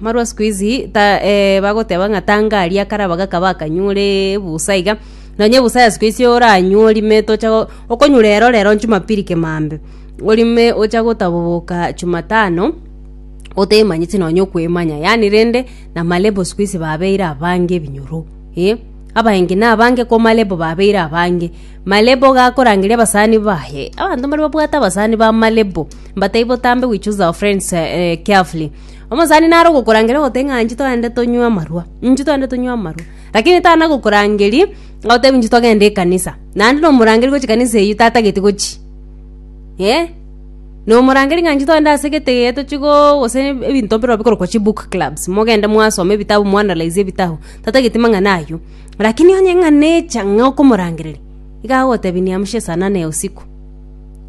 Marwa sikuizi ta eh, bagoteba ng'a tanga aria kare abagaka bakanyure ebusa iga nonye ebusa ya sikuizi oranywe orime tocha go- okonyura ero rero jumapili kemambe orime ocha gotaboboka jumatano otemanyeti nonye okwemanya yaani rende na malebo sikuizi babeire abange ebinyoro eh, abaengi na abange ko malebo babeire abange malebo gakorangeria abasani baye abanto mbari babwate abasani ba malebo mbatebi botambe we choose our friends eh, carefully Omosani nare ogokorangera ogotebi ng'a inche toende tonywe amarwa, inche toende tonywe amarwa. Rakini tanagokorangeria, agotebi inche togende ekanisa. Naende na omorangeri gochia ekanisa eyio tatageti gochia, eh. Na omorangeri ng'a inche toende ase egete gete tochie gooo gose ebinto biro bikorokwa chibook clubs, mogende mwasoma ebitabu mo analyse ebitabu, tatageti mang'ana ayio. Rakini onye ng'a necha ng'a okomorangereria, iga agogotebi niamoshe saa nane ya usiku,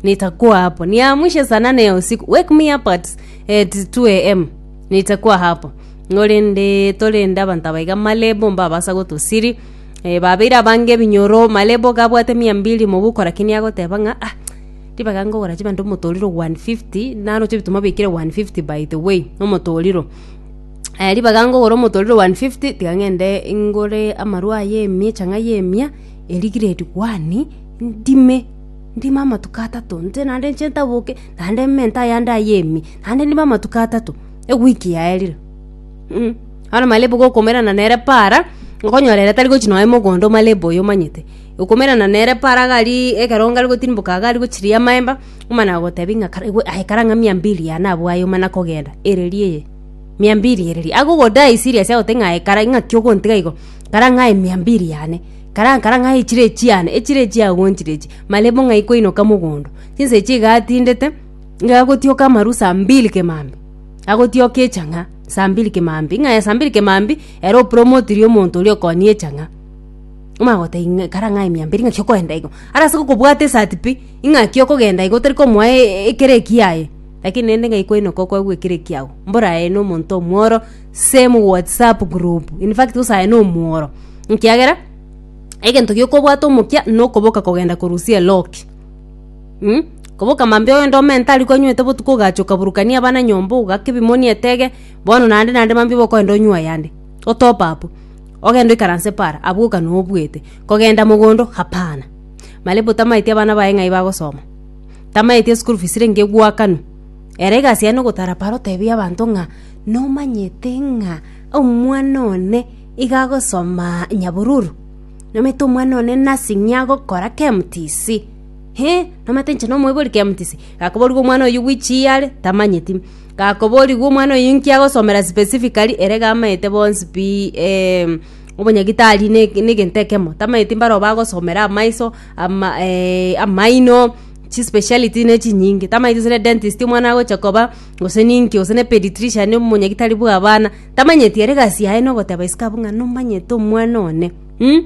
nitakuwa hapo, niamoshe saa nane ya usiku, wake me up at Et 2AM nitakwa hapo norende torende abanto abaiga malebo mbabasa gotosiri eh, babeire abange ebinyoro malebo gabwate mia mbili moguko lakini agoteba ng'a ah, ribaga ngogora chibando omotoriro 150 naro chio bituma bekire 150 by the way omotoriro Eh, ribaga ngogora omotoriro 150 tiga ng'ende ingore amarwa aye emia echang'a ye emia eri grade one ndime ndime amatuko atato nse naende nche ntaboke naende emento ayande aye ime, naende nibe amatuko atato ewiki yaerire. Mh, bono Mariba iga okomerana nere para, okonyora ere tari gochi nonye mogondo Mariba oyo omanyete. Okomerana nere para iga aria ekero onga arigotirimboka iga arigochiria amaemba, omana agotebia ng'a kare gwe aye karang'a mia mbiri yane abwo aye omana kogenda, ereria eye, mia mbiri ereria. Agogodae serious agote ng'a aye kara ng'aki ogontiga igo, karang'a aye mia mbiri yane, kara karang'a aye chire chiane, echire chiago nchire echi, Mariba ng'ai kwainoka mogondo. Chinsa echio iga atindete, iga agotioka amaru saa mbili kemambia, agotioka echang'a saa mbili kemambia, ing'a ya saa mbili kemambia ere opromotirie omonto oria okonyia echang'a, omagoteba ing'a ekara ng'a mia mbili ng'aki okoenda igo, arase gokobwata esati pi, ing'aki okogenda igo otari komoa e- ekero eki yaye, lakini naende ng'ai kwainoka okwegwa ekero eki agwo, mboro aye na omonto omworo, same whatsapp group, in fact gose aye na omworo, ekiagera egento gioka obwate omokia, nokoboka kogenda korusia eloki. Mh, koboka mambia ogende omente aria kwanywete botuko ogacha okaburukania abana nyomba ogaka ebimoni etege, bono naende naende mambia boka ogenda onywe ayande, o top up, ogende oikaranse paara, abwo oka nobuete. Kogenda mogondo, hapana. Malebo tamaeti abana baye ng'ai bagosoma, tamaeti eschool fees renge egwakanwe, ere egasi yaye nogotara paara otebie abanto ng'a nomanyete ng'a omwana one iga agosomaa nyabororo? Nomanyete omwana one nasi ng'ia agokora kemtisi? Hĩ, nomanyete inche nomoibori kemtisi? Gakoborigwa omwana oyio which year, tamanyeti. Gakoborigwa omwana oyio nki agosomera specifically, ere iga amanyete bonsi pi eeh obonyagitari ne ne egento ekemo, tamanyeti mbaro bagosomera amaiso, ama amaino, chispeciality ne chinyinge, tamanyeti gose ne dentist omwana agocha koba, gose ninki, gose ne peditrician omonyagitari bw'abana. Tamanyeti ere egasi yaye nogoteba isiko abwo ng'a nomanyete omwana one um,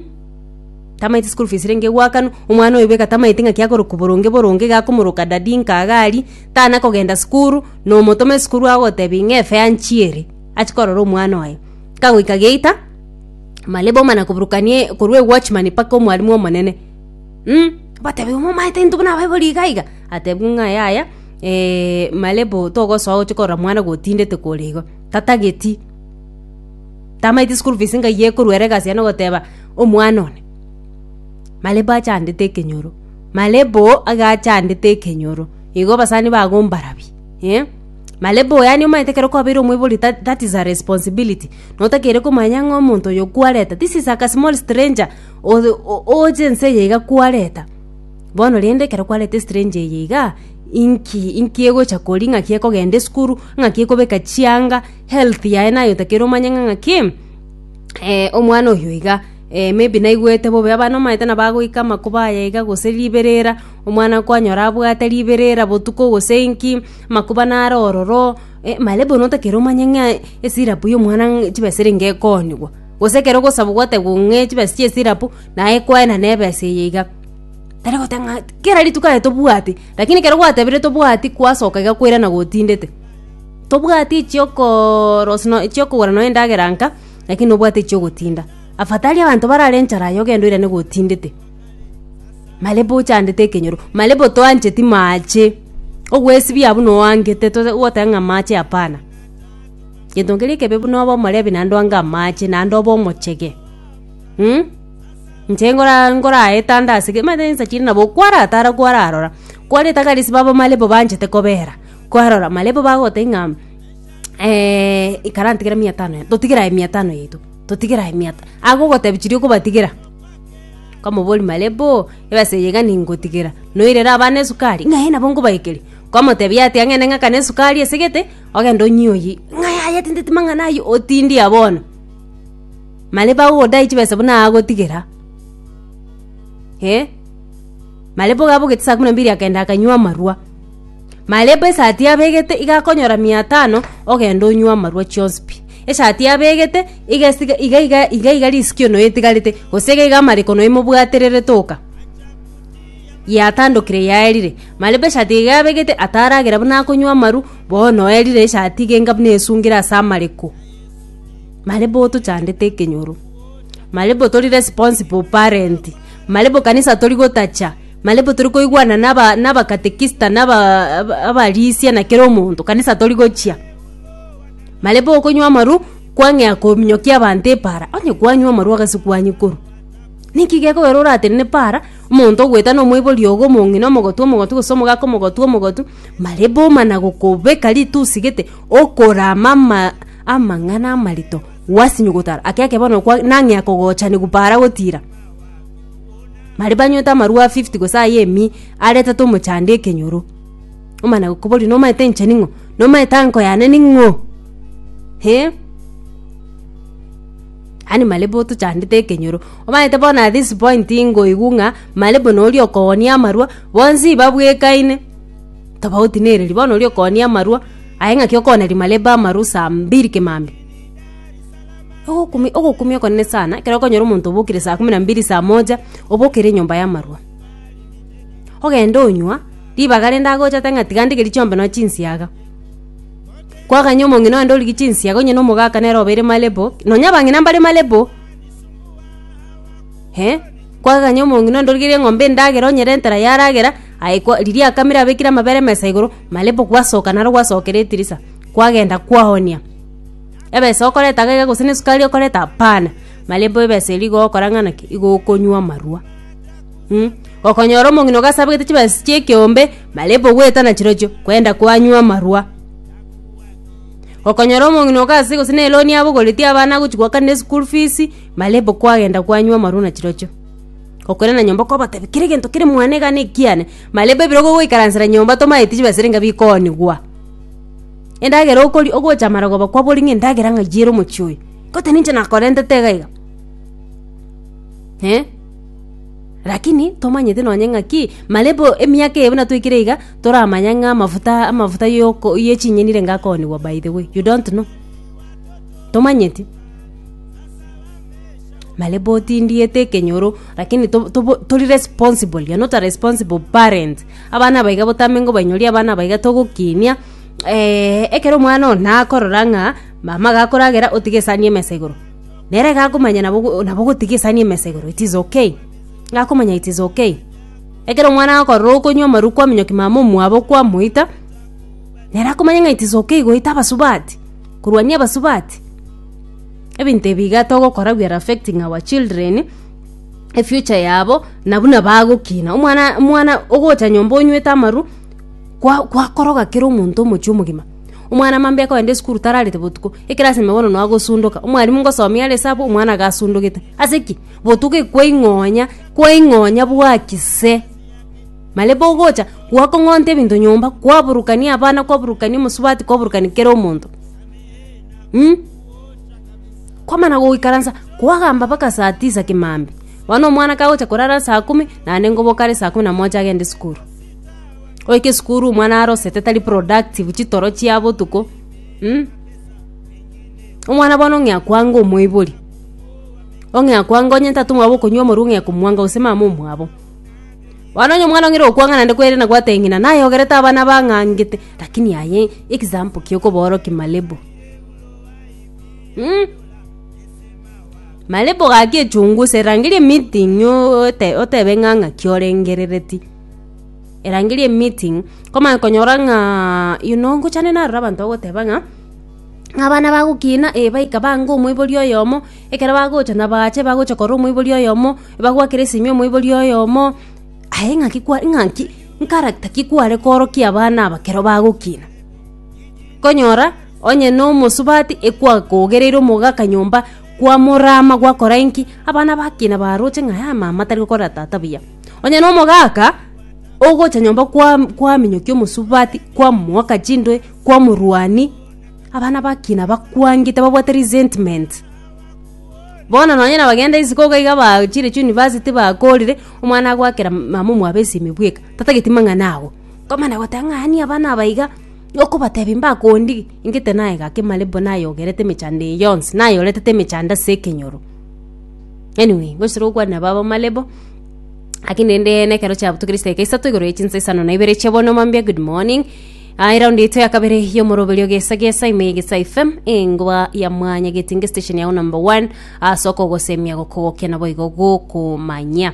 tamaeti school fees renge egwakanu, omwana oyo bweka tamaeti ng'aki akorokwa boronge boronge iga akomoroka daddy nka iga aria, tana kogenda sukuru, nomotoma esukuru agotebia ng'a efe anchiere, achie korora omwana oye. Kagoika geita, malebo mana koburukania e- korwa ewatchman mpaka omwalimu omonene um, batebia momaete intwe buna abaibori iga iga, atebia ng'a yaya malebo togosoa gochia korora mwana gotindete kore igo. tatageti, tamaeti school fees ng'ai ekorwa ere egasi yaye nogoteba omwana one, marebo achandete ekenyoro, marebo iga achandete ekenyoro, igo abasani bago mbarabie eh, marebo oyo yaani omanyete ekero kwabeire omoibori ta that is a responsibility, notakeire komanya ng'a omonto oyo kwareta this is aka small stranger oyo oche ense eye iga kwareta. Bono rende, ekero kwarete estrange eye iga, inki inki egocha koria, ng'aki ekogenda esukuru, ng'aki ekobeka chianga, health yaye naye otakeire omanye ng'a ng'aki eh omwana oyo iga eh maybe naigwete bobe, abana omanyete nabo agoika amakuba aye iga gose riberera, omwana kwanyora abwate riberera botuko gose inki, makuba naro ororo, eh mare bono otakeire omanye ng'a esyrup ya omwana ng'a chibesa ere inga ekoonigwa. Gose ekero ogosaba gwatebiwa ng'a chibesa chia esyrup, naye kwaena na ebesa eye iga. Tari goteba ng'a kera rituko aye tobwate, lakini ekero gwatebire tobwati kwasoka iga kwairana gotindete. Tobwati echiokooorosia no- echiokogora nonye endagera nka, lakini obwate echiogotinda. Afatari abanto barare enchara aye ogende oirane gotindete, maribo ochandete ekenyoro, maribo toancheti maache, ogwesibia buna oangete tosa goteba ng'a amache hapana. Gento keria ekebe buna obe omorebi naende oange amache naende obe omochege. Inche ngora ngoraetanda ase kegima ere ensa chiria nabo kwaratara kwararora kwareta akarese babo marebo banchete kobera kwarora marebo bagoteba ng'a ikarantigere mia tano eye totigere aye mia tano yaito totigere aye mia tano agogotebi chiria okobatigera okamobori marebo ebesa eye iga ningotigera noirere abana esukari ng'a eh nabo nkobaekeria kwamotebi ati ang'e neng'e akane esukari esegete ogende onyie oyie ng'a yaya tinteti mang'ana aywo otindie bono. Mare bagogotae chibesa buna agotigera, eh, mare bobe abogete saa kumi na mbili akenda akanywa amarwa, mare bo esati abegete iga akonyora mia tano ogenda onywe amarwa chionsi pi, esati abegete iga esige iga iga iga iga risikio noyo etigarete gose iga iga amariko noyo emobwatererete oka, yatandokire yaerire, mare bo esati iga abegete ataragera buna akonywa amaru bono erire esati iga enga buna esungire ase amariko. Maribo tochandete ekenyoro, maribo tori responsible parent, maribo kanisa tori gotacha, maribo tori koigwana na aba- na abakatekista na aba- aba- abarisia na kera omonto, kanisa tori gochia. Maribo okonywa amaru kwang'ea kominyokia abanto epara, onye kwanywa amaru agase kwanywa ikoru, ninki gekogera oratenene para omonto ogoeta na omoibori ogo omong'ina omogotu omogotu gose omogaka omogotu omogotu, maribo mana gokobeka ritusi gete okorama ama. Amang'ana amarito gwasinywa gotara ake ake bono kwa nang'ea kogochani gupara gotira. Mari banywete amarwa a 50 gose aye emi aretete omochando ekenyoro. Omana gokoboria nomaete inche ning'o? Nomaete anko yane ning'o? Hee? Yaani marebe otochandete ekenyoro. Omanyete bono at this point ingoigwa ng'a marebe noria okowonia amarwa bonsi babwekaine. Tofauti nere ri, bono oria okoonia amarwa, aye ng'aki okoona rimarebe amarwa saa mbiri kimambi? Ogokumi- ogokumia okonene sana, ekero okonyora omonto obokire saa kumi na mbiri saa moja, obokire enyomba y'amarwa. Ogenda onywa, ribaga rende agocha atebi ng'a tiga ndigeri chiombe nonya chinsiaga. Kwaganya omong'ina onde origie chinsiaga onye na omogaka nere obeire malebo, nonya abang'ina mbare malebo, eh, kwaganya omong'ina onde origereria eng'ombe endagera onye rentera yaragera. Aye kwa, riria akamire abekire amabere emesa igoro, malipo gwasoka naro gwasokera etirisa kwagenda kwaonia ebesa okoreta gaiga gose ne esukari okoreta hapana malipo ebesa eria igo okora ng'a naki igo okonywa amarwa mm okonyora omong'ina ogasabegete chibesa chia ekeombe malipo gwaetana chirochio kwenda kwanywa amarwa okonyora omong'ina ogasi gose ne eloni abogoretie abana agochi goakana eschool fees malipo kwagenda kwanywa amarwa na chirochio. Gokorera na nyomba kobatebia kera egento kere mwane gane ekiane marembe bire ogogoikaransera nyomba tomaeti chibesa ere nkabi ikoonigwa endagera okori ogocha marogoba kwabori ng'a endagera ng'a yere omochi oyo goteba ninche nakorentete iga iga eh rakini tomanyeti nonye ng'aki marembe emiaka eye buna toikire iga toramanye ng'a amafuta amafuta yoko ye chinyeni renge akoonigwa by the way you don't know tomanyeti. Malebo otindiete ekenyoro lakini to- tobo- tori responsible you are not a responsible parent abana aba iga botambe ngo bainyori abana aba iga togokinia ekero omwana oyo nakorora ng'a mama gakoragera otiga esani emesa igoro nere iga akomanya nabo ogo nabo ogotiga esani emesa igoro it is okay iga akomanya it is okay ekero omwana akorora okonywa amaru kwaminyokia mama omwabo kwamoita nere akomanya ng'a it is okay goita abasubati korwania abasubati. Ebinto ebi iga togokora we are affecting our children efuture yabo na buna bagokina omwana omwana ogocha nyomba onywete amaru kwa kwakoroga kera omonto omochie omogima omwana mambia akoenda esukuru tararete botuko ekerasi ime bono noagosundoka omwalimu ngosomia are esabu omwana iga asundogete ase ki botugo ekwaing'onya kwaing'onya bwaki se naende bogocha gwakong'onta ebinto nyomba kwaburukania abana kwaburukania omosubati kwaburukania kera omonto mh. Kwamana goikaransa, kwagamba mpaka saa tisa kimambi. Bono omwana kagocha korara saa kumi, naende ngoboka are saa kumi na moja agende sukuru. Oike sukuru omwana arosete tari productive chitoro chia botuko mm? Omwana bono ng'ea kwanga omoibori. Ong'ea kwanga onye tata omwabo okonywa omorwe ong'ea komwanga gose mama omwabo. Bono onye omwana ong'ire gokwanga naende kwerena gwateba ng'ina naye ogerete abana bang'angete, lakini aye example ki okoborokia malebo. Mm. Malipo gaki echunguse erangeria meeting ote otebe ng'a ng'aki orengerereti erangeria meeting komanya konyora ng'a you know ngochane narora abanto bagoteba ng'a ng'a abana bagokina eh baika bange omoibori oyomo ekero bagocha na bache bagocha korora omoibori oyomo ebagwakere esimi omoibori oyomo aye ng'aki kwa ng'aki ncharacter ki kware korokia abana aba ekero bagokina. konyora onye nomosubati ekwakogereire omogaka nyomba kwamorama gwakora inki abana bakina baroche ng'a yaya mama tari gokorera tata buya onye nomogaka ogocha nyomba kwa- kwaminyokia omosubati kwamoaka chindwe kwamorwani abana bakina bakwangete babwate resentment bono nonye na bagenda isiko iga iga bachire chuniversity bakorire omwana agoakera mama omwabo esimi bweka tatageti mang'ana ago. Komana gotang'ani abana aba iga, nokobatebia mbakondige, ingete naye gake marembo nayogerete emechando eye yonsi, nayoretete emechando ase ekenyoro. Anyway, gochira okwane nabo aba marembo, lakini rende eye nekero chiabutukire chidakika isato igoro ya chinsa isano na ibere chia bono mambia good morning. Ah, eraundi yaito ya kabere yomoroberio gesa gesa ime ya Egesae FM, engwa ya mwanya getinge station yago number one, ase okogosemia gokogokena boigo gokomanya.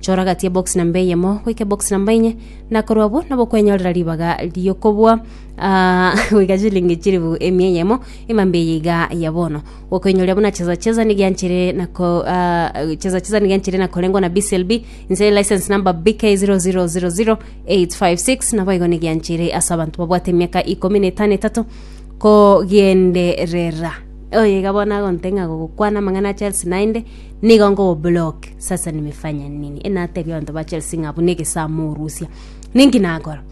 Chora gati ebox namba eyemo goika ebox namba enye na korwa abwo nabo okwenyorera ribaga ri'okobua ah, goika chilingi chilifu emia eyemo emambe eye iga ya bono gokoinyoria buna chesa chesa nigianchire nako ah, chesa chesa nigianchire nakorengwa na BCLB inse license number BK 0000856 nabo igo nigianchire ase abanto babwate emiaka ikomi na etano etato kogenderera oye iga bono agonteng'a gogokwana amang'ana a Chelsea naende nigo nkoblock sasa nimefanya nini enatebia abanto ba chelsea ng'a buna egesamo orusia ninki nakora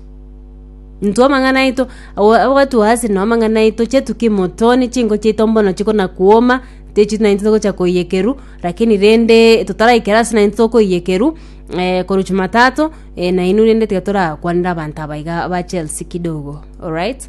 intwe amang'ana aito ogotwase na amang'ana aito chetuke emotoni chinko chiaito mbono chikona kwoma techi naintwe togocha koiyekeru lakini rende totaraikera ase naintwe tokoiyekeru eh korwa jumatatu eh nainwe rende tiga torakwanere abanto aba iga aba chelsea kidogo orit.